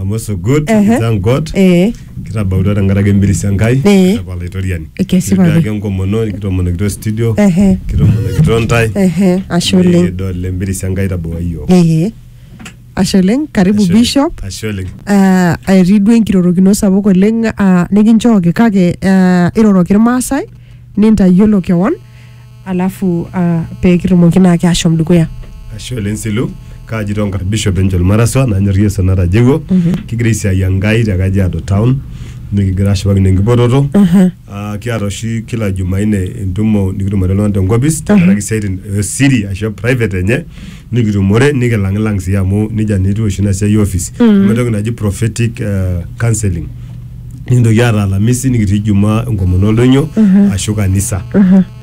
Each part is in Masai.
I'm also good. Ehe. Thank God. eh Kitabautua tenkaraki embirisi Enkai. Eh. Apa Olaitoriani. Kesipa Kitii ake. ake enkomono, nikitomonokito studio. Ehe. Kitomonokito ntae. ehe ashe oleng Nikidol embirisi Enkai tabua iyiook. ehe ashe oleng karibu Ashe oleng. bishop Ashe oleng. Ah, etii duo enkirorokino sapuk oleng ah, nikinchooki kake ah, iroroki irmaasai nintayiolo kewon alafu uh, pee kitumoki naake ashom dukuya ashe oleng silu kaaji tonkar bishop enchol maraswa nanyor yesu natajewuo kigira aisiai enkai te kajiado town nikigira ashipakino enkipototo Ah, kiata oshi kila jumaine entumo nikitumore iltung'anak tenkopis tenkaraki isiaitin esiri ashu private enye nikitumore nikilang'ilang sii amu nejia naa etiu oshi ina siai e office amu entoki naji prophetic uh, counseling nikintoki aata alamisi nikitii jumaa enkomono oldonyo ashu kanisa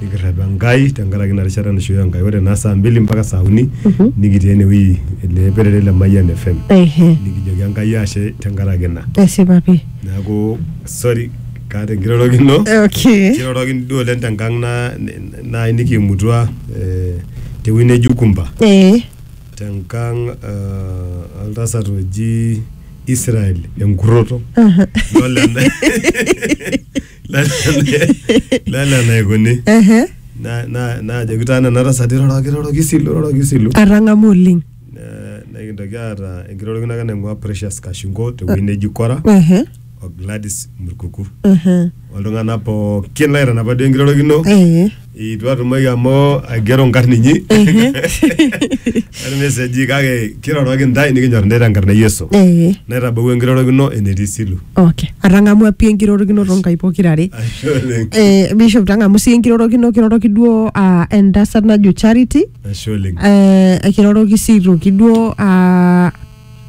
nikirrep enkai tenkaraki ina rishata naishooyo enkai ore naa saa mbili mpaka saa uni nikitii enewueji ele perere le Mayian FM ehe nikijoki enkai ashe tenkaraki ina esipa pii neeku sorry kaata enkirorokino okay kirorokini duo oleng tenkang na naaji nikiimutua eh, tewueji neji Ukumba ee tenkang eh, oltasat oji Israel enkurroto aha, Lole ena- lole ena- lole enaikuni ehe, Na- na- naajoki taa nena tasati roroki roroki isilu roroki isilu atang'amu oleng Ne- nikintoki aata enkirorokino ake naing'ua Precious Kashingo tewueji neji Kora Ehe, o Gladys Murkuku ehe, oltung'anak pookin laitanapa duo enkirorokino ehe. eitu atumoki amu aigero nkarn inyi Ehe. ormeseji kake kiroroki ntae nikinyor ntae tenkarna e Yesu Ehe. naitabawua enkirorokino enetii silu Okay. Atang'amua pii enkirorokino too nkaik pokirare. Ashe oleng. Eh, Bishop tang'amu sii enkirorokino kiroroki duo ah, entasat najo Charity Ashe oleng. Eh, ekiroroki sii aitoki duo ah,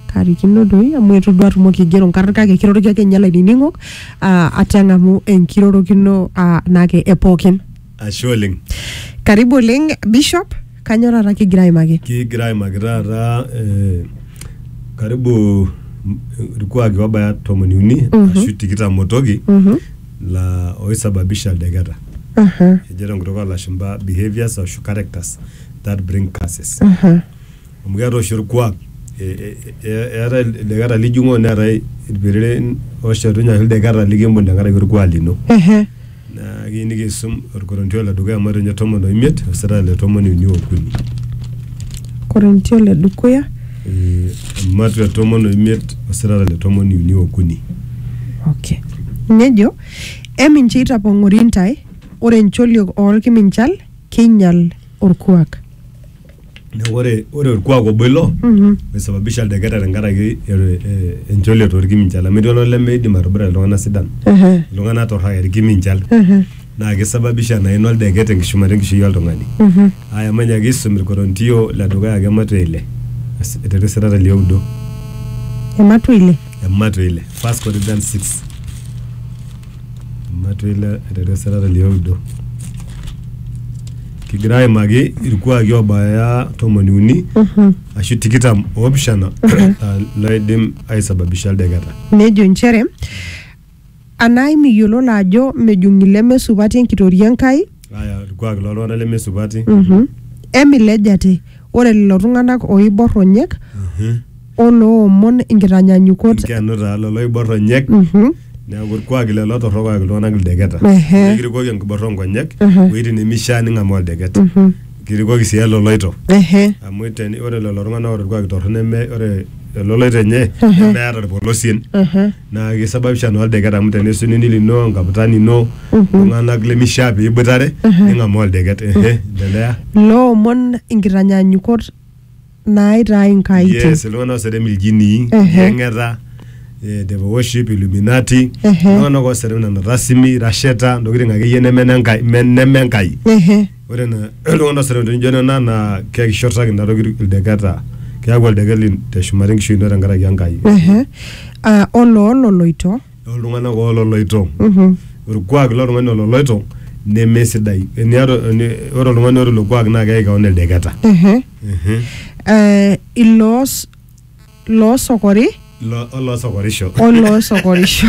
karikino doi amu eitu duo atumoki aigero nkarn kake kiroroki ake ninye lainining'ok ah, ate ang'amu enkirorokino ah, naake epookin Ashe oleng. karibu oleng bishop kanyo taata kigira aimaki Kigira aimaki taata eh, karibu mm, irkuaki obaya tomoni uni ashu tikitam otoki la oisababisha ildeketa. Ejo tenkutuk oo lashumba behaviors ashu characters that bring curses. Amu keetae oshi olkuak, eetae ildeketa lijung'oo neetae ilpiriren ooshetunye ashu ildeketa likimbung' tenkaraki olkuak lino. Naa kiyieu nikiisum olkorintio le dukuya matejo ninye tomon o imiet mstari le tomon uni okuni. Korintio le dukuya. Eh, Matua tomon oimiet osirata le tomon uni okuni. okay. nejo emincho itapong'ori intae ore ncholiok oolkiminchal keinyal orkuak Neeku ore ore orkuak obo ilo Mhm. oisababisha ildeketa tenkaraki eh, eh, encholiet orkiminchal amu etii oltung'ani lemeidim atobira iltung'anak sidan Ehe, iltung'anak torraka irkiminchal ehe. naa keisababisha naa ina oldeket enkishumata enkishui oltung'ani. Aya manya kiisum ilkorontio le dukuya ake ematua ile Asi, aiteru esirata lioudo Ematua ile. ematua ile 1 Corinthians 6 ematua ile aiteru esirata lioudo kigira aimaki ilkuaki oobaya tomoni uni ashu tikitam oopishana aa loidim aisababisha oldeketa. Nejo inchere Anaa imiyiololo ajo mejung ileme supati enkitoria e Nkai? Aya ilkuaaki loo ltung'ana leme supati. Emilej ate, ore lelo tung'ana ooibor ronyek o loomon inkitanyanyukot. Inkenu taa lelo oibor ronyek. Neaku, ilkuaaki lelo torrok oyaki iltung'ana ildeketa. Ehe. Nikirikoki enkiborra oo nkonyek iwuejitin nemeishaa ning'amaa oldeket. Kirikoki sii eloloito. Ehe. Amu ore lelo tung'ana oota olkuak torrono neme ore eloloito enye nemeata ilpolosien. naa kisababisha naa oldeket amu tenesu nini lino enkaputani ino iltung'anak lemishaa piiboitare ning'amaa oldeket ehe endelea loomon inkitanyanyukot naaitaa inkaitin yes iltung'anak ooserem iljinii Ehe. yeng'eta eh, devil worship illuminati Ehe. iltung'anak ooserem nena rasimi rasheta ntokitin akeyie neme nenkai me- neme enkai Ehe. Ore ena iltung'ana osero nijo nena naa kekishurtaki ina toki ildeketa. Keaku oldeket lin teshumata enkishui ino tenkaraki Enkai. Ehe. Ah, oloololoito. Oltung'ana oololoito. Mhm. Olkuak lo tung'ani ololoito nemesidai. Eniata, ore oltung'ani oata ilo kuak naa keyaki kewon ildeketa. Ehe. Ehe. Eh, iloos. loosokori Lo- oloosokorisho oloosokorisho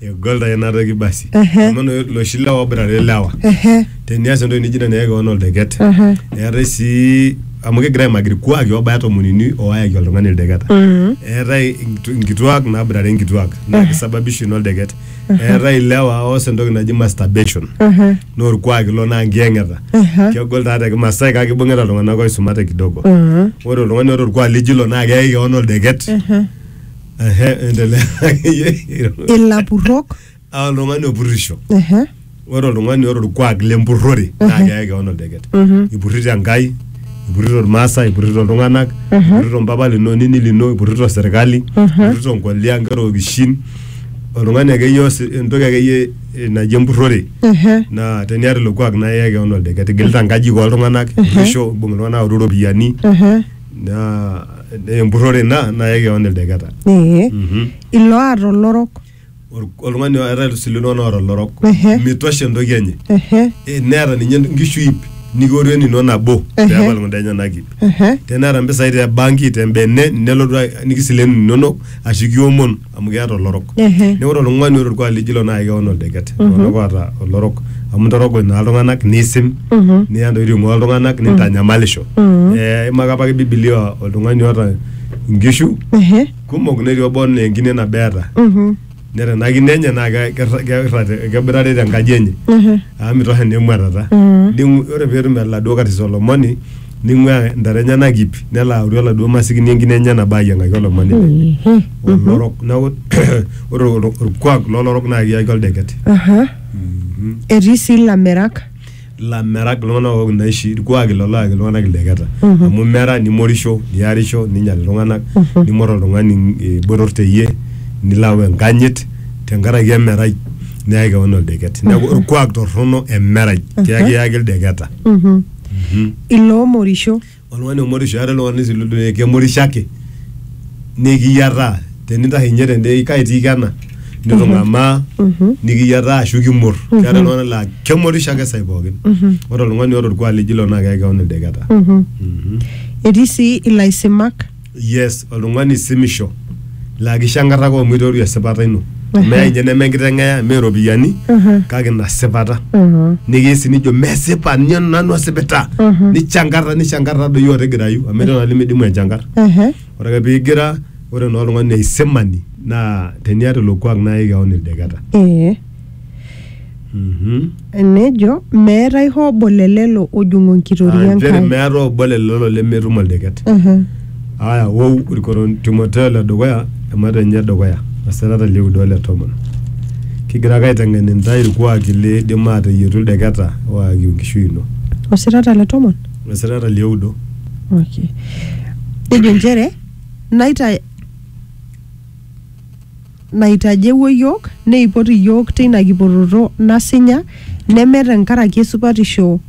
egol taa ina toki basi Ehe. amu no- loshi lewa oboitare lewa ehe tenias entoki nijo ina neyaki kewon oldeket ehe eetae sii amu kegira aimaki irkuaki obaya tomonini oayaki oltung'ani ildeketa Mhm. eetae inkitu- inkituak naboitare inkituak naa kisababisha ina oldeket eetae ilewa oos entoki naji masturbation Aha. naa orkuak ilo naa nkiyeng'eta Aha. kegol taa te kimasai kake ibung'ita iltung'anak oisumate kidogo Mhm. ore oltung'ani oota orkuak lijo ilo naa keyai kewon oldeket Aha. Ehe, endelea akeyie. ilapurrok Ah, oltung'ani opurrisho Aha. ore oltung'ani oota orkuak lempurrore naa keyai kewon oldeket ipurrito enkai ipurrito irmaasai ipurrito iltung'anak ipurrito mpapa lino onini lino ipurrito serkali ipurrito nkolia inkera okishin oltung'ani akeyie oos entoki akeyie eh, naji empurrore Ehe. naa teniata ilo kuak naa iyaki kewon oldeket igilita nkajijik oltung'anak ipurrisho imbung iltung'anak aoru iropiyiani Ehe. naa naa empurrore ina naa iyaki kewon ildeketa Ee. Mhm. Ilo aata olorok. Ol- oltung'ani eetae sii iltung'anak oota olorok Ehe. mitosha entoki enye Ehe, Eh, neeta ninye nkishu ip nikiore nino nabo Ehe. peepal kunda enyenak ip ehe, teneeta mpisai te banki te mbene nelotu a- nikisilenu inonok ashu kiomon amu keeta olorok Ehe. neeku ore oltung'ani oota orkuak lijo ilo naa keon oldeket iltung'anak oota olorok amu intorogony naa iltung'anak niisim Mhm. niya ntokitin ing'ua iltung'anak nintanyamalisho Mhm. Eh, imaka apake bibilia oltung'ani oota inkishu ehe. kumok netii obo naa enkine nabo eeta Mhm. neta ena kine enye naa ke- kerra- kerra te- keboitare tenkaji enye Mhm. amu mitosha naa emuatata Mm. Ning'u- ore peetum eladuo katis olomoni ning'uaa intare enyenak ip nelo aoru oladuo masikini enkine enye nabo ayiang'aki olomoni lenye Mhm. olorok neeku ore ol- orkuak lolorok naa kiyaki oldeket Aha. Mhm. Etii sii ilamirak. lamerak iltung'anak ook inaishi irkuaki lolo ayaki iltung'anak ildeketa amu mera nimorisho niarisho ninyial iltung'anak nimor oltung'ani eh, botor teyie nilo au enkanyit tenkaraki emerai neyaki kewon oldeket neeku orkuak torrono emerai kiyaki iyaki ildeketa Mhm. iloomorisho oltung'ani omorisho eetae oltung'ani sii lodua kemorisho ake nikiyiataa tenintashe ninye tende kai itiiki ena nitung'amaa nikiyiataa ashu kimurr keetae iltung'anak laa kemorisho ake sai pookin ore oltung'ani oota orkuak lijio ilo naa keyai kewon ildeketa Mhm. etii sii ilaisimak yes oltung'ani simisho laa kishankarraka omoitoru esipata ino meya inye neme enkiteng'eya mee iropiyiani kake ina sipata nikiya sii nijo mesipa ninye nanu asipita nichankarra nichankarra doi otigirayu amu etii oltung'ani limidimu enchankarr Ehe. ore ake pigira ore naa oltung'ani aisimani naa teniata ilo kuak nayaki kewon ildeketa Ee. Mhm. Nejo, meetae hoo obo le lelo ojung'o enkitoria Ah, nchere Enkai. meeta obo le lelo lemetum oldeket Mhm. aya wou irkoron timoteo le dukuya emata enye e dukuya osirata lioudo ole tomon kigira ake aiteng'en intae irkuaki liidim aateyietu ildeketa oakiu enkishui ino Osirata le tomon. osirata lioudo Okay. Nejo nchere naita naitajewuo iyiook neipot iyiook teina kipototo nasinya neme tenkaraki esupatisho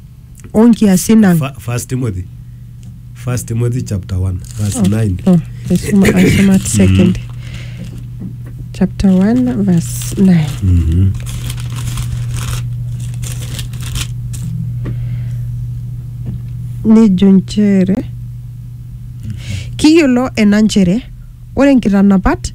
oo nkiasin ang. Fa- First Timothy. First Timothy chapter 1 verse 9. Oh, aisuma aisuma at second. Chapter 1 verse 9. Mhm. nejo nchere kiyiolo ena nchere Ore nkitanapat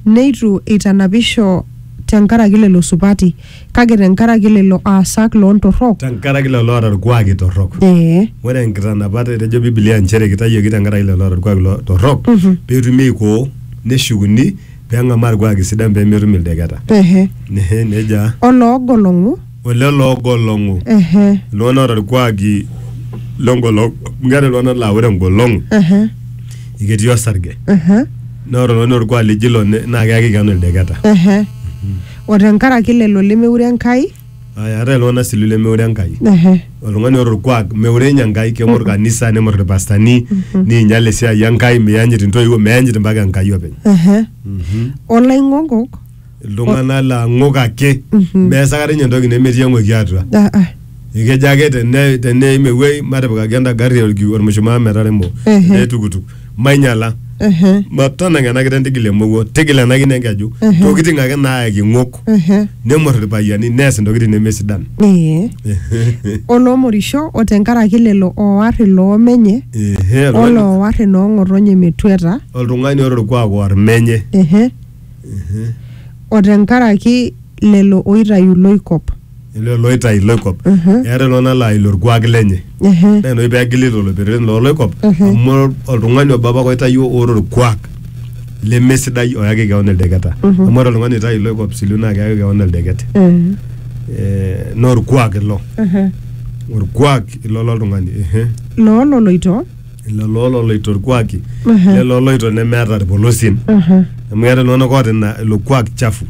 neitu eitanapisho te nkaraki lelo supati, kake te nkaraki lelo aasak loo ntorrok. Tenkaraki lelo oata ilkuaaki torrok. Ee. Ore nkitanapat, etejo Biblia nchere keitayioki tenkaraki lelo oata ilkuaaki lo- torrok, pee etumi aikoo, neshukuni, pee eng'amaa ilkuaaki sidan pee metum ildeketa. Ehe. Nehe, neija. O loogolong'u. o lelo oogolong'u Ehe, iltung'anak oota irkuaki lengolong' amu keeta iltung'anak laa ore engolong' ehe, ketii osarge ehe, naa ore oltung'ani orkuak lijo ilo ne- naa keyaki keon ildeketa ehe. O tenkaraki lelo lemeure Enkai. Aya, eetae iltung'anak sii lemeure Enkai Ehe, oltung'ani oota orkuak meure ninye Enkai keng'or kanisa nemor irpastani niinyal esiai Enkai miyanyit intoiwuo meyanyit mpaka Enkai openy ehe. Olaing'okok iltung'anak laa ng'ok ake mees akata ninye entoki nemetii eng'oki atua Ah, ah. ekejo ake tene- teneim ewuei matipikaki enda gari orki- ormushumaa metaremo Ehe. ele tukutuk mainyiala Ehe, matanang ena kiteng tigila emowuo tigila ena kine enkeju Ehe. ntokiting ake naayaki ng'ok ehe. nemor irpayiani nees intokiting nemesidan Ee. oloomorisho o tenkaraki lelo ooar iloomenye Ehe, oltung'ani- oloowar inoong'otonye metuata oltung'ani ore orkuak oar menye ehe o tenkaraki lelo oitayu loikop. Lelo looitayu loikop. Mhm. Eeta iltung'anak laa ilo orkuak lenye. Ehe. Naa ina oshi peegili lelo pereren loo loikop Mhm. amu oltung'ani obo apake oitayuo oota orkuak lemesidai oyaki keon ildeketa. Mhm. Amu ore oltung'ani oitayu iloikop siliu naa keyaki keon oldeket. Eh, Eh, naa orkuak ilo. ehe. Orkuak ilo loltung'ani. Ehe. Loo loloito lelo ololoito irkuaki Ehe. lelo oloito nemeeta irpolosien Aha. amu keeta iltung'anak oota ina ilo kuak chafu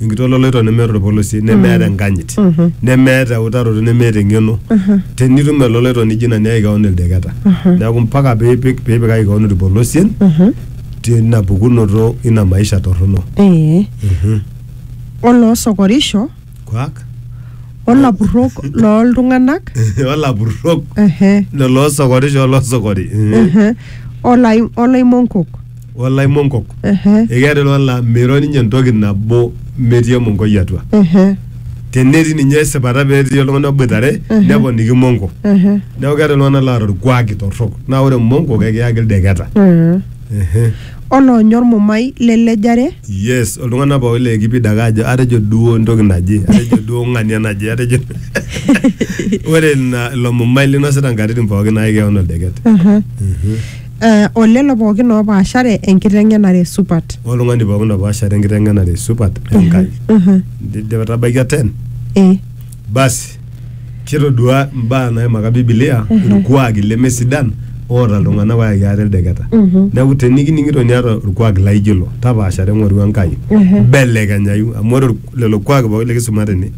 enkiti ololoito nemeeta orpolosie nemeeta enkanyit Mhm. nemeeta eutaroto nemeeta eng'eno Aha. tenitum eloloito nijo ina niyaki kewon ildeketa Aha. neeku mpaka piipik piipikaki kewon irpolosien Aha. tina pukunoto ina maisha torrono Ee. Mhm. oloosokorisho Kwak. olapurrok looltung'anak Olapurrok. ehe, Lelo osokorisho olosokori. ehe, olai- olaimonkok Olaimonkok. ehe, Ekeeta ilo la meiro ninye entoki nabo metii emonkoi atua. ehe, Tenetii ninye esipata petii oltung'ani oboitare Mhm. neponiki monko. ehe, Neeku keeta iltung'anak loota orkuaki torrok. Naa ore monko kekiyaki ildeketa. ehe. Ehe. Oloonya olmumai le lejare. Yes, oltung'ana pooki le Kipid ake ajo atejo duo entoki naje, atejo duo ng'ania naje, atejo ore ina ilo mumai linosita nkatitin pooki naai keon oldeket. Eh, o lelo pooki oopaashare enkiteng'enare supat. Oltung'ani pooki opaashare enkiteng'enare supat e Nkai. Indipa itabaikia ten? Eh. Basi, kitodua imbaa naimaka Biblia irkuaaki lemesidan oota iltung'ana oyaki ate ildeketa. Neaku tenikining'ito niata orkuak laijo ilo, tapaashare ng'oru Enkai, mbelekenyayu amu ore ork- lelo kuaaki pooki likisuma tene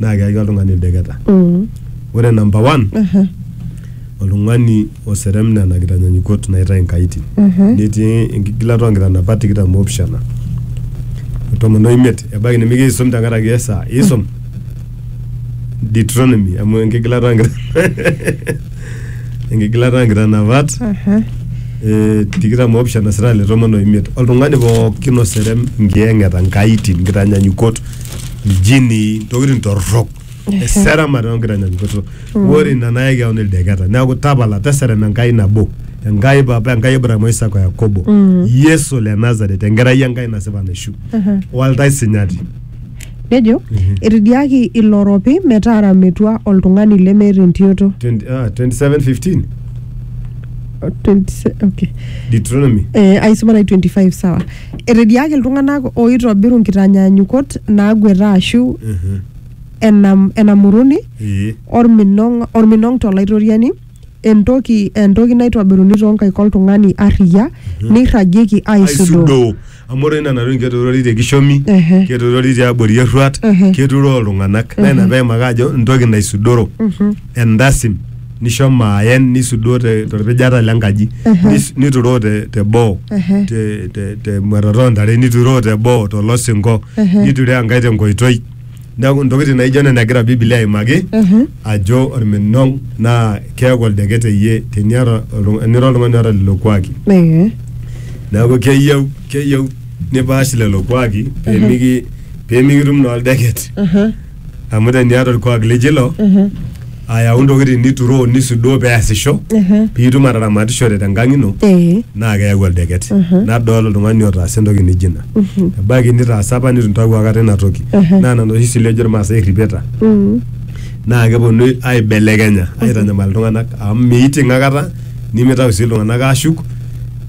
naa keyaki oltung'ani ildeketa. Ore number one, oltung'ani oserem nena kitanyanyukot naitae nkaitin netii enkigilata oonkitanapat tikitam oopishana o tomon oimiet ebaiki nimigira aisum tenkaraki esaa isum Deuteronomy amu enkigilata oonkitanapat enkigilata oonkitanapat eh, tikitam oopishana sira le tomon oimiet oltung'ani pookin oserem nkiyang'eta nkaitin nkitanyanyukot iljinii ntokitin torrok eseramat onkitanyaanyukoto ore ina nayaki kewon ildeketa neeku tapala teserem enkai nabo enkai papa enkai abraham oisaka o yakobo yesu le nazaret enkerai enkai nasipa naishu waltai sinyati nejo etidiaki ilo ropi metaara metua oltung'ani lemeeta entioto 20 ah, 27:15 20 okay. deuteronomy Eh, aisoma nai 25 sawa Etediaaki iltung'ana ooitobiru nkitanyaanyukot naagueta aashu enam, enamuruni Ee. olminong olminong to Laitoriani, entoki entoki naitobiruni too nkaik oltung'ani arriyia, neirragieki aaisudoo. aisudoo amu ore nena tokitin keturori te kishomi Ehe. keturori tiabori erruat Ehe. keturoo iltung'anak naa ina peimaka ajo entoki naisudoro endasin nishomo aen nisudoo te- torpijata le nkaji nis- nituroo te- teboo Ehe. te- te- temuatata oontare nituroo teboo tolosinko Ehe. nituroo enkae tenkoitoi neeku ntokitin naijo nena egira bibilia aimaki Mhm. ajo orminong naa keeku oldeket eyie teniata oltung- enira oltung'ani oota lelo kuaki Ee. neeku keyieu keyieu nipaash lelo kuaki pemiki pemikitum naa oldeket Aha. amu teniata orkuak lijo ilo ayau ntokitin nituroo nisudoo peasisho Ehe. piitum ataramatishore tenkang ino Eh. naa keyau oldeket nadol oltung'ani otaasa entoki nijo ina ebaiki nitaasa apa nitu intawuo akata ina toki Ehe. naa nena oshi sile ejo irmaasai erripeta Mm. naa keponu aibelekenya aitanyamal iltung'anak amu miiting akata nimitau sii iltung'anak aashuk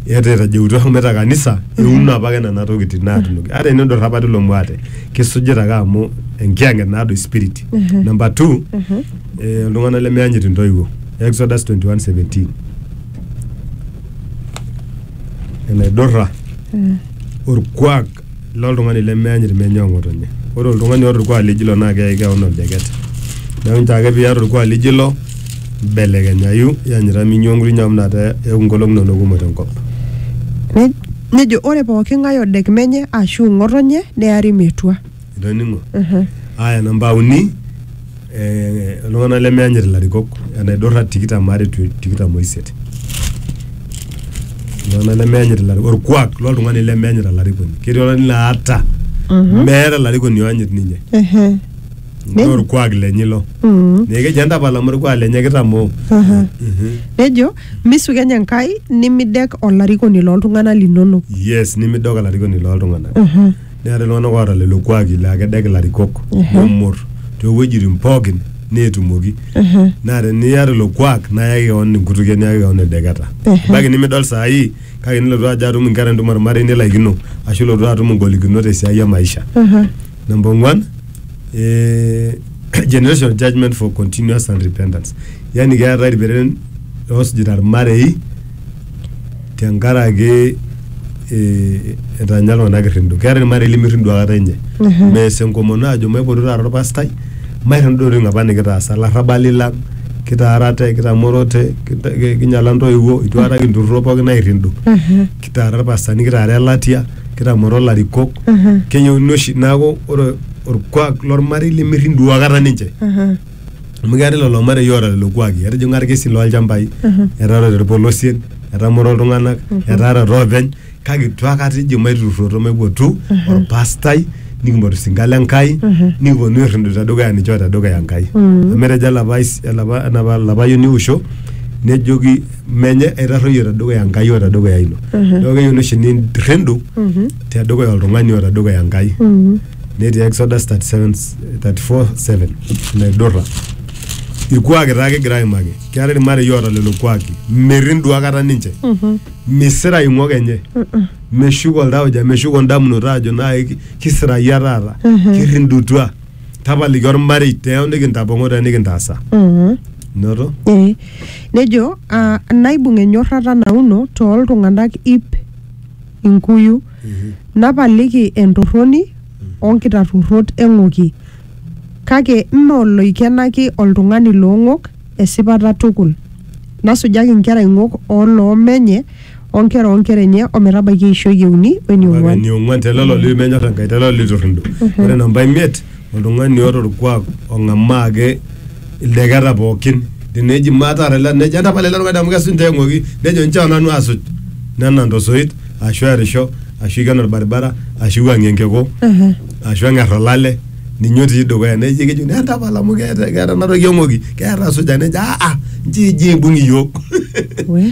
eeta etajeutua homoita kanisa euno apake nena tokitin naatunoki ata enidurra apa tilo muate kisujita ake amu enkiyang'et naado spirit Mhm. number two Mhm. eh, iltung'anak lemeyanyit intoiwuo exodus 21:17 enaidurra Mm. orkuak loltung'ani lemeyanyit menye ong'otonye ore oltung'ani oota orkuak lijo ilo naa keyai keon oldeket neeku nchoo ake piata orkuak lijo ilo mbelekenyayu yanyita minyua nkuti nyamu nate eeku nkolong'i inonok kumok tenkop Ne- Nejo ore pooki ng'ae odek menye aashu ng'otonye neari metua. Itoning'o? Aya namba uni, eh, iltung'anak lemeyanyit ilarikok, enaidurra tikitam are to tikitam oisiet. Iltung'anak lemeyanyit ilarikok, orkuak loltung'ani lemeyanyita olarikoni. Ketii oltung'ani laa ata meeta olarikoni oyanyit ninye. Ehe. Naa orkuak lenye ilo. Neeku keji entapala amu orkuak lenye kitamoo. Aha. Mhm. Nejo Misukeny Enkai nimidek olarikoni looltung'ana linono. yes nimidok olarikoni looltung'anak neeta iltung'anak oota lelo kuaki laa kedek ilarikok nemor toowuejitin pookin neetumoki naa teniya lelo kuak naa yaki kewon enkutukie niyaki kewon edeketa ebaiki nimidol saa hii kake nilotu ajo atum inkera entumo ormarei nilaikino ashu ilotu atum ingolikinot esiai e maisha Number one, eh, generational judgment for continuous and repentance. Yani keetae irperen oosujita irmarei tenkaraki eh, etanya iltung'anak irrindo. Keetae irmarei lemirrindo akata enye. Mhm. Mees enkomono ajo maipotu taata orpastai, mairrindo intokiting apa nikitaasa, ilarrabali lang, kitaarate, kitamorote, kita- ki- kinyala intoiwuo, itu akata kinturruro pookin airrindo. Mhm. kitaara irpastani kitaara elatia kitamoro ilarikok keyieuni oshi neeku ore orkuak lormarei lemirrin duo akata ninche amu keetae lelo marei oota lelo kuaki etijing'a irkesin lolchambai etaarate irpolosien etamoro iltung'anak etaarate oopeny kake itu akata eji maiturruroto maipotu orpastai nikimpotu isinkan le Nkai nikiponu airridu tedukuya ninche o tedukuya Enkai amu etejo olapa ais- olapa enapa olapayioni Eusho nejoki menye aitarruoyie tedukuya Enkai o tedukuya ino. Neeku keyiuni oshi nirrindu tedukuya oltung'ani o tedukuya Enkai. Netii Exodus 37, 34, 7 naidurra. Irkuaki taa kigira aimaki. Keetae irmarei oota lelo kuaki. Mirrindu akata ninche. Misira ing'ok enye. Meshuko oltauja, meshuko indamunot aajo naai kisirayia taata, kirrindutua. tapaliki ormarei teo nikintapong'o teo nikintaasa Mhm. noto Eh, nejo ah, naibung enyorrata nauno tooltung'anak ip inkuyu napaliki entorroni onkitarruorrot eng'oki kake mme oloikenaki oltung'ani loong'ok esipata tukul nasujaki inkera ing'ok oloomenye o nkera oo nkera enye o metabaiki eishoi e uni o ene ong'uan. eniong'uan te lelo litu menyor Enkai, te lelo liturrindo. Ore namba imiet, oltung'ani oota olkuak ong'amaa ake ildeketa pookin. Teneji maa taata ele nejo entapala ele tung'ani amu kesuj ntae eng'oki, nejo inchoo nanu asuj. Nenang' to soit ashu erisho ashu eiken olbaribara ashu eiwuang'ie enkiku ashu eng'er olale ninye otii dukuya. Nejo kejokini entapala amu keeta keeta ena toki eng'oki, keeta asuja nejo aa nchoo eji eibung iyiook. We.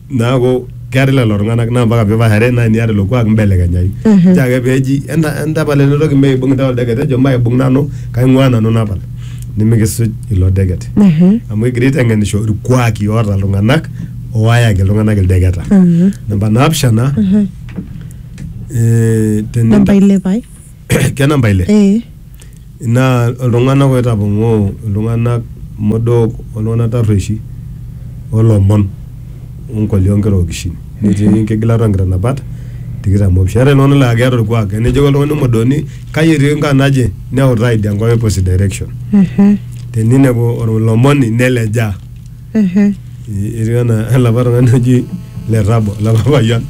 Neaku keetae lelo tung'anak naa mpaka pipashare naa eniata ilo kuak mbelekenyai. Nchoo ake peeji enta entapal ele toki mee aibung intae oldeket ejo maibung nanu kaing'ua nanu napal nimikisuj ilo deket. Amu egira aiteng'enisho irkuaki oota iltung'anak owayaki iltung'anak ildeketa. Namba naapishana, eh teni Namba ile pae. kenamba ile eh naa iltung'anak oitapong'oo iltung'anak modook oltung'anak tarrueshi olomon onkoli onkera okishin netii enkigilata onkitanapat tikitam opishana eetae iltung'anak laa keeta orkuak enejoki oltung'ani omodoni kai etii enkaa naje neutaa idia nkae opposite direction mhm teninepu olomoni nelejaa etiu anaa elapa tung'ani oji le tabo elapa payian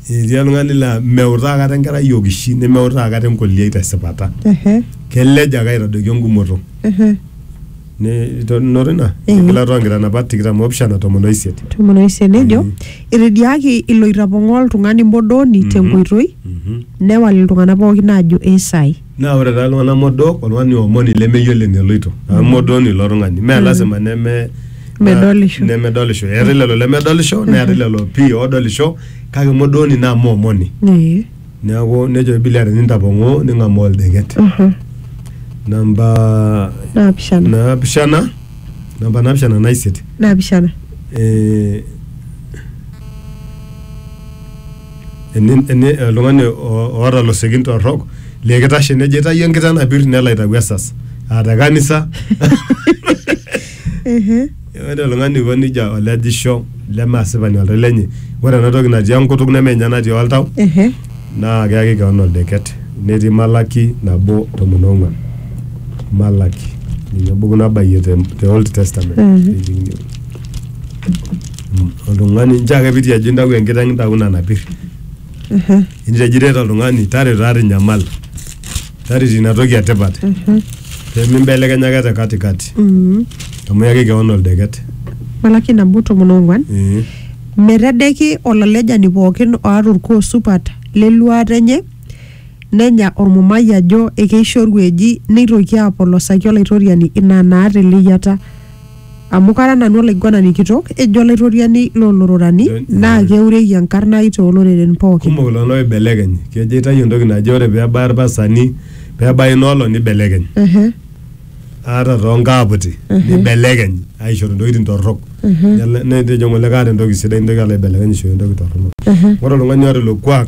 etii oltung'ani laa meutaa kata enkerai okishi nemeutaa kata enkoliai tesipata kelej ake aitadoiki engumoto Ne- to- noto ina Eh. enkilata oonkitanapat tikitam oopishana tomon oisiet tomon oisiet nejo Mhm. etediaki ilo itapong'oo oltung'ani modooni tenkoitoi Mhm. newal iltung'anak pookin aajo eisai Naa ore taa iltung'ana modook oltung'ani omoni lemeyiolo eneloito amu modooni ilo tung'ani mee lasima neme Medolisho. nemedolisho eetae lelo lemedolisho neetae lelo pii odolisho kake modooni naa mee omoni Ee. neeku nejo bibilia tenintapong'oo ning'amaa oldeket Mhm. namba Naapishana. naapishana namba naapishana naisiet Naapishana. eh, oltung'ani oota losekin torrok lee kitashe nejo aitayu enkitanapir nelo aitayu esas aa te kanisa. Ore oltung'ani oiko nejia olejisho leme asipani oltau lenye. Ore ena toki natii enkutuk neme ninye natii oltau naa keyaki kewon oldeket. Netii Malaki nabo tomon ong'uan. Malaki ninye embuku nabayie te old testament. oltung'ani nchoo ake piti ajo intau enkiteng intau ina napir intejo iret oltung'ani tareto taa tinyamal tareto ina toki etipat pemimbelekenya ake te katikati amu iyaki kewon oldeket Malaki nabo tomon ong'uan Eh, metedeki olalejani pookin oata orkuo supat leluaata enye nenya ormumai ajo ekeishoru eji neitoki apolosaki olaitoriani ina naata eleyiata Amu kara nanu olaiguanani kitok, ejo Olaitoriani loo lororani, naa keureki enkarna ai too loreren pooki. Kumok iltung'ana ooibelekeny. Kejo aitayu entoki naje ore pee ebaya ilpastani, pee ebaya ina olong neibelekeny. Ata too nkaaputi neibelekeny aishoru intokitin torrok. Nejo ng'ole kaata entoki sidai nintoki alo aibelekeny aishoru entoki torrono. Ore oltung'ani oata ilo kuak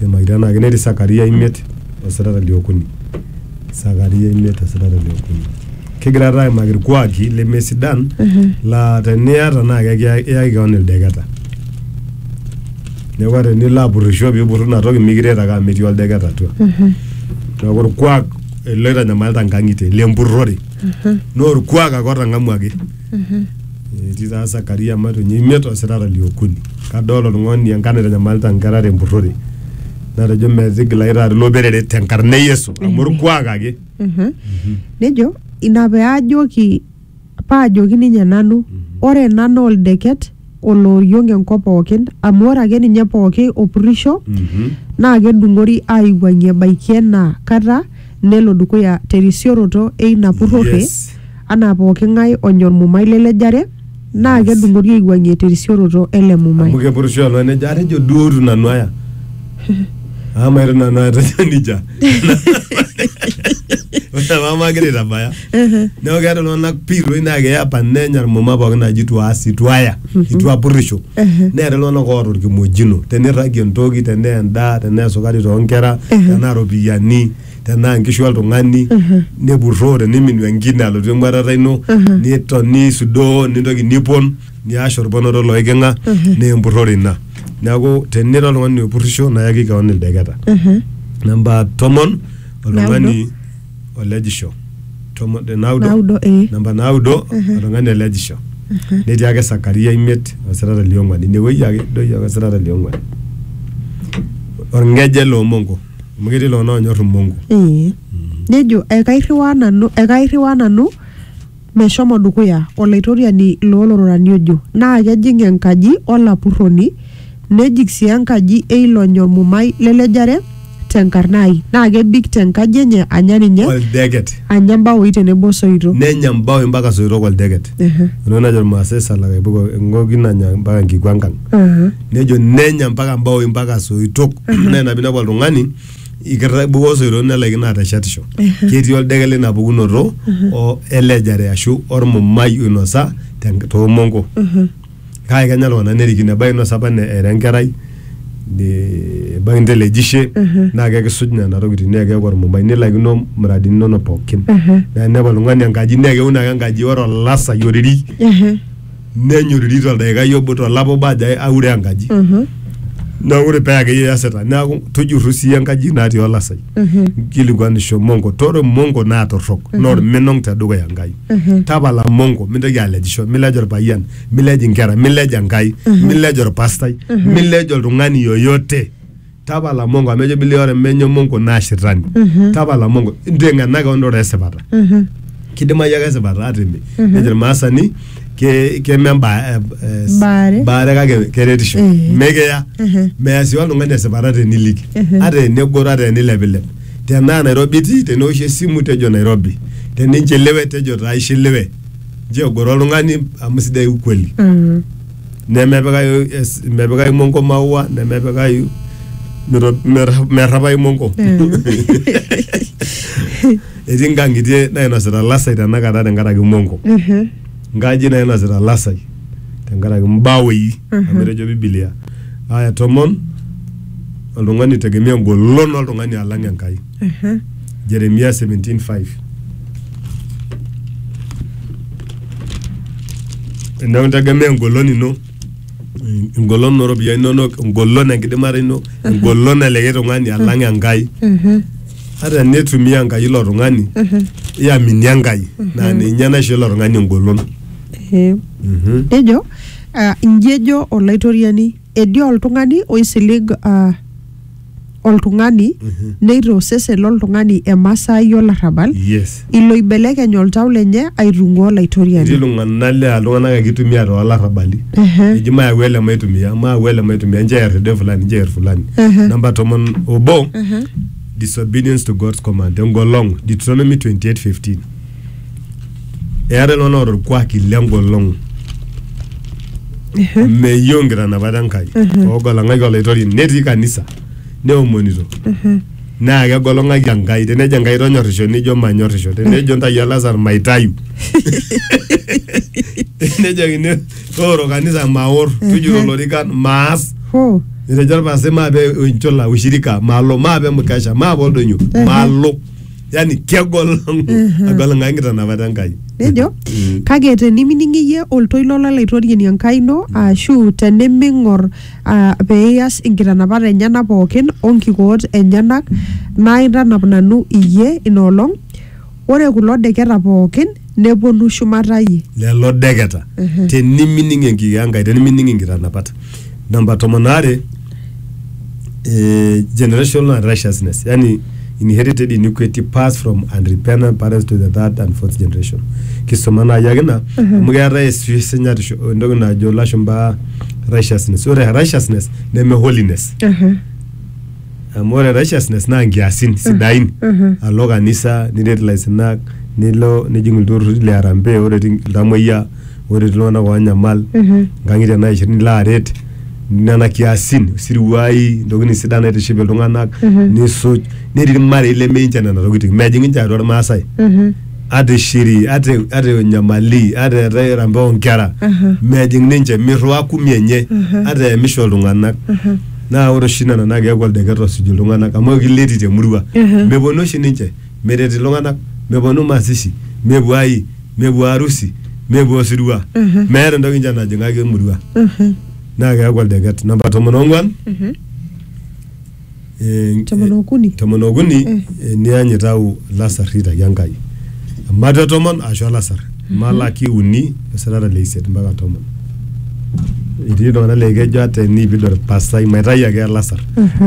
Neimakitia naa ake netii Sakaria imiet o sitata liokuni. Sakaria imiet o sitata liokuni. Kigira taa aimaki irkuaki lemesidan laa teniata naa kekiyaki iyaki kewon ildeketa. Neeku ata enilo apurrisho piipurru ina toki mikiret ake amu metii oldeket atua. Neeku orkuak ele oitanyamalita inkang'itie lempurrore. Naa orkuak ake otang'amuaki Etii taa Sakaria matonye imiet osirata liokuni. Kadol oltung'ani enkana eitanyamalita inkera tempurrore. Natejo metigilayu taata ilo perere tenkarna e Yesu amu orkuak ake. nejo ina peajoki paajoki ninye nanu ore ena naa oldeket olooriong enkop pookin amu ore ake ninye pooki opurisho Mhm. naa kedung'ori aiwuang'ie ebaiki ena kata nelo dukuya terisioroto eina purrore Yes. anaa pooki ng'ae onya olmumai lelejare naa Yes. kedung'ori aiwuang'ie terisioroto ele amu mumai kepurisho alo nejo atejo duo itu nanu aya ama itu nanu aya tejo nija ore mama agira aitabaya Ehe. neeku keeta iltung'anak piiroi naa keya apa nenya irmuma pookin naaji itu aas itu aya itu apurrisho Ehe. neeta iltung'anak oota orkimojino tenirragie entoki tenaa endaa tenaa esukari toonkera Ehe. tenaa iropiyiani tenaa inkishu oltung'ani nepurroo teniminu enkine alotu eng'uatata ino Ehe. niton nisudoo nintoki nipon niash orponoto loiking'a Ehe. naa empurrore ina neeku tenira oltung'ani opurrisho nayaki keon ildeketa Ehe. namba tomon oltung'ani o lejisho tomon eh, naudo Naudo, eh. namba naudo oltung'ani olejisho netii ake sakaria imiet osirata liong'uan inewueji ake doi ake osirata liong'uan orng'eje loomongo amu ketii iltung'anak onyor imongo Ee. nejo ekairriwaa nanu ekairriwaa nanu Meshomo dukuya Olaitoriani loo lororani ojo, naa kejing enkaji o lapurroni, nejik sii enkaji e ilo nyormumai le lejare te nkarna ai, naa kebik te nkaji enye anya ninye, Oldeket. anya imbaoi tenebo o soito. Nenya mbaoi mpaka soito koldeket. Ehe. Ore najo Ilmaasai salakaipuko eng'oki nanya mpaka nkikuankang. Aha. Nejo nenya mpaka mbaoi mpaka soitok. Naa ina piinepu oltung'ani ikerra ibukoo osoito nelaikino ateshetisho ketii oldeke lina pukunoto o elejare ashu ormumai oinosa ten- toomonko kake kenya iltung'anak nerikino ebaiki inosa apa ne- era enkerai ne- ebaiki intelejishe naa kekisuj nena tokitin naa keeku ormumai nilaikino muradini inonok pookin naa inepu oltung'ani enkaji naa keun ake enkaji ore olasai oriri nenyoriri toldaikai obo tolapa obo ajo aure enkaji naa ore paa akeyie iasita neaku tujurru sii enkaji natii olasai nkilikuanisho mongo tore mongo naa torrok naa orminong tedukuya Enkai tapala mongo mintoki alejisho milej orpayian milej inkera milej Enkai milej orpastai milej oltung'ani yoyote tapala mongo amu ejo bilia ore menye mongo naa shetani tapala mongo inteng'ena keon ore esipata kidimayu ake esipata atimi nejo irmaasani ke- keme emba- eh, eh, Baare. baare kake keretisho Eh. mekeya Ehe. meya sii oltung'ani esipata teniliki Ehe. ata enegoro ata enilepilep tenaa nairobi itii teneoshi esimu tejo nairobi teninchiliwe tejo taa ishiliwe nchoo egoro oltung'ani amu sidai ukweli Mm. nemepikayu es- mepikayu monko maua nemepikayu mito- merra- merrapayu monko etii nkang'itie nainosita lasai tenakata tenkaraki monko Mhm. nkajijik nainosita lasai tenkaraki mbawei amu etejo bibilia aya tomon oltung'ani tegemea engolon oltung'ani alang enkai Jeremia 17:5. Enaa integemea engolon ino, engolon ooropiyiani inonok, engolon enkidimata ino, engolon elikae tung'ani alang Enkai. Ata enitumia Enkai ilo tung'ani, iamini Enkai naa ninye naisho ilo tung'ani engolon. Ee. Mhm. Nejo ah, inji ejo Olaitoriani, etii oltung'ani oisilig ah, oltung'ani Mhm. neitaa osesen loltung'ani emasaai olarrabal yes ilo oibelekeny oltau lenye aitung'uaa etii olaitoriani iltung'anak laa iltung'anak ake itumia toolarrabali Ehe. eji mayau ele maitumia mayau ele maitumia nchoo eer elde fulani nchoo eer fulani Ehe. namba tomon obo Ehe. disobedience to God's command engolong'u Deuteronomy 28:15 eetae iltung'anak oota orkuaki lengolong meyieu nkitanapat enkai oogolong'aki olaitoriani netii kanisa neomonito naa kegolong'aki enkai tenejo enkai tonyorrisho nijo manyorrisho tenejo ntai olasar maitayu tenejokini tooro kanisa maor tujuro ilorikan maas Hoo. etejo orpastai maape enchula ushirika malo maape mkesha maape oldonyo malo yani kegol agol ngai nkitanapata enkai nejo kake tenimining iyie oltoilo lolaitoriani enkai ino ashu teniming'or ah, pee iyas inkitanapat enyenak pookin onkikoot enyenak naitanap nanu iyie inoolong ore kulo deketa pookin nepuonu shumata iyie. lelo deketa tenimining enki e Enkai tenimining inkitanapat namba tomon aare eh, generational righteousness yani inherited iniquity passed from unrepentant parents to the third and fourth generation kisuma naaji ake ina amu keetae esi- esinyatisho entoki najo ilashumba righteousness ore righteousness neme holiness Aha. amu ore righteousness naa nkiasin sidain alo kanisa niret ilaisinak nilo nijing ilturruri le harambee ore etii iltamoyia ore etii iltung'anak onyamal nkang'itie naishir nilo aret nena kiasin isiruai intokitin sidan naitiship iltung'anak nisuj netii irmarei leminche nena tokiting mejing inche atua irmasae ata ishiri ata e- ata enyamali ata eetae harambee onkera mejing ninche mirriwaa kumi enye ata eemisho iltung'anak naa ore oshi nena naa keeku oldeket osuj iltung'anak amu ekileti temurua Ehe. meponu oshi ninche meret iltung'anak meponu masishi mepuo ai mepuo arusi mepuo osirua Ehe. meeta entoki ninche najing'aki emurua Mhm. naa keeku oldeket namba tomon ong'uan Mhm. eh, Tomon okuni. tomon okuni Eh. eniany itau ilasarri itaki Enkai mate tomon ashu olasar malaki uni esirata le isiet mpaka tomon etii iltung'anak laa kejo ata enipid orpastai maitayu ake olasar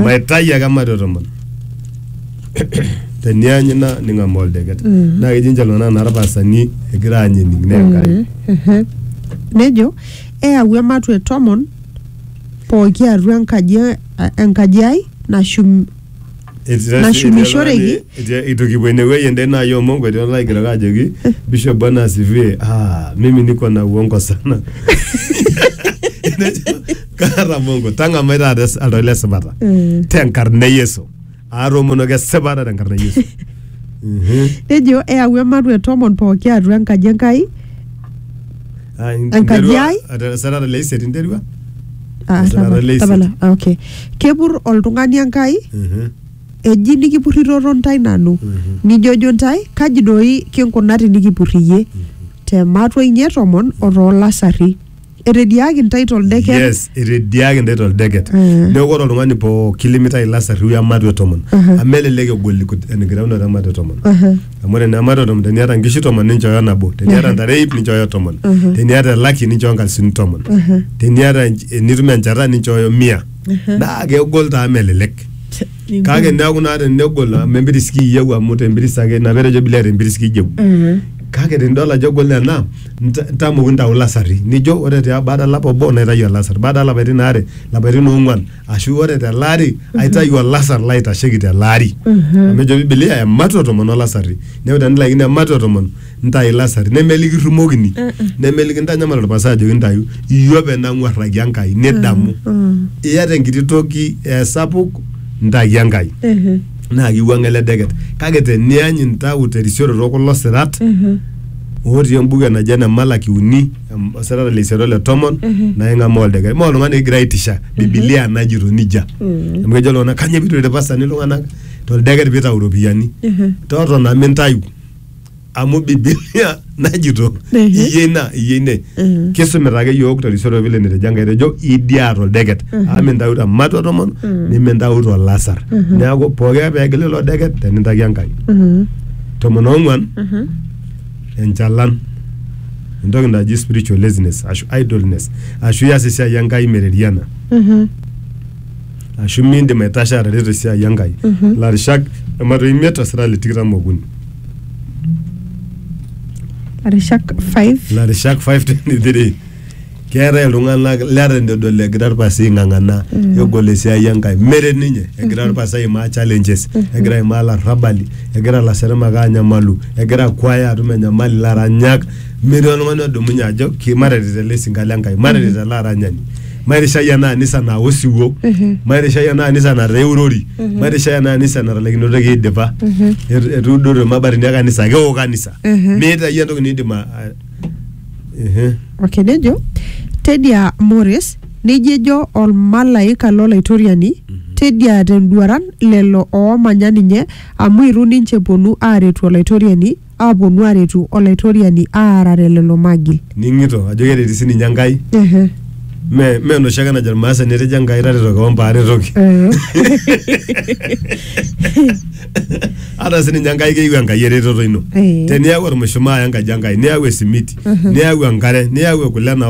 maitayu ake mate tomon teniany ina ning'amaa oldeket naa kejo ninche iltung'anak naa irpastani egira aany ening naa Enkai Mhm. nejo eyau ematwe tomon pooki atua enkaji, enkaji ai nashum Nashumishoreki. Itu kipuo inewueji ende naa yie omongo etii olaigerok ajoki Bishop Bwana asifiwe. Ah, mimi niko na uongo sana. Nejo, Kaata mongo, tang'amai taata es- oltau le sipata. Mm. Tenkarna e Yesu. Aatoomonoki esipata tenkarna e Yesu. Mhm. Nejo eyau ematua e tomon pooki atua enkaji Enkai Ah, in- Enkaji interua- ai? ata- sarara le isiet interua Ah, Esaa tapala, late. tapala. Ah, okay kepur oltung'ani enkai Mhm. eji nikipurritoto ntae nanu Mhm. nijojo ntae kaji doi kinkuna tinikipurriyie te matua inye tomon o toolasarri etediaaki ntae toldeken yes etediaki ntae toldeket Mm. neeku ore oltung'ani pooki limitae ilasarri we matua e tomon Mhm. amu elelek egol enkitaunoto e matua e tomon Aha. amu ore naa mato tomon teniata nkishu tomon ninchooyo nabo teniata ntare ip ninchooyo tomon teniata elaki ninchooyo nkalisuni tomon teniata ench- enitum enchata ninchooyo mia naa kegol taa melelek kake neeku naa tenegol amu empiris kiyieu amu tempiris ake ina petejo bilia tempiris kiyieu kake tenidol ajo egol ena nta- ntamoki ntau lasarri nijo ore tia baada olapa obo naitayu olasar baada olapaitin aare lapaitin ong'uan ashu ore tele ari aitayu olasar laitasheki tele ari amu ejo bibilia ematua tomon olasarri neeku tenilaikino ematua tomon ntayu ilasarri nemelikirrumokini nemelikintanyamal orpasai ajoki ntayu iyie openy nang'uarraki Enkai nidamu iyata enkiti toki esapuk ntaki Enkai Ehe. naa kiwuang'a ele deket kake teniany intau terisioroto kulo sirat otii embuku enaji ene Malaki uni em, osirata le isiet ole tomon naa ing'amaa oldaikai maa oltung'ani egira aitisha bibilia najito nijia amu kejo iltung'anak kanyoo pitu irpasani iltung'anak toldeker pitau iropiyiani totona mintayu amu bibilia najito Mhm. iyie ina iyie ine Mhm. kisumita ake yiok terisioroto vile netejo enkai etejo idia toldeket amu mintayu te matua tomon nimintau tolasar neeku pooki ake peegil ilo deket tenintaki enkai Mhm. tomon ong'uan Mhm. enchalan entoki naji spiritual laziness ashu idleness ashu ias esiai enkai mereriana Mhm. ashu miindim aitasho atareto esiai enkai Mhm. larishak ematoi imiet osira le tikitam okuni Arishak 5 larishak 523 keetae iltung'anak leton eitu edol egira irpasi aing'ang'ana egol esiai enkai meret ninye egira irpasi aimaa challenges egira aimaa larrabali egira ilaseremak anyamalu egira kwaya atum enyamali laranyak metii oltung'ani odumunye ajo ki- mataret ele sinka le nkai mataret ele aranyani mairishai ena anisa naa osiwuo mairishai ena anisa nataa eurori mairishai ena anisa natalaikinotoki aidipa etu- etuudote irmabatini e kanisa kewo kanisa meeta iyie entoki niidim a- a- Ehe. okay nejo tedia mores neji ejo olmalaika lolaitoriani tedia tenduaran lelo oomanya ninye amu itu ninche eponu aaretu olaitoriani aaponu aaretu olaitoriani aarare lelo magil ning'ito ajo kereti sininye enkai Ehe. me me enoshi ake najo irmaasani etejo enkai tareto kewon paa aretoki Eh. ata sininye enkai keyieu enkai eretoto ino Eh. teniaku ormushumaa enkaji enkai niyau esimiti niyau enkare niyau kule nao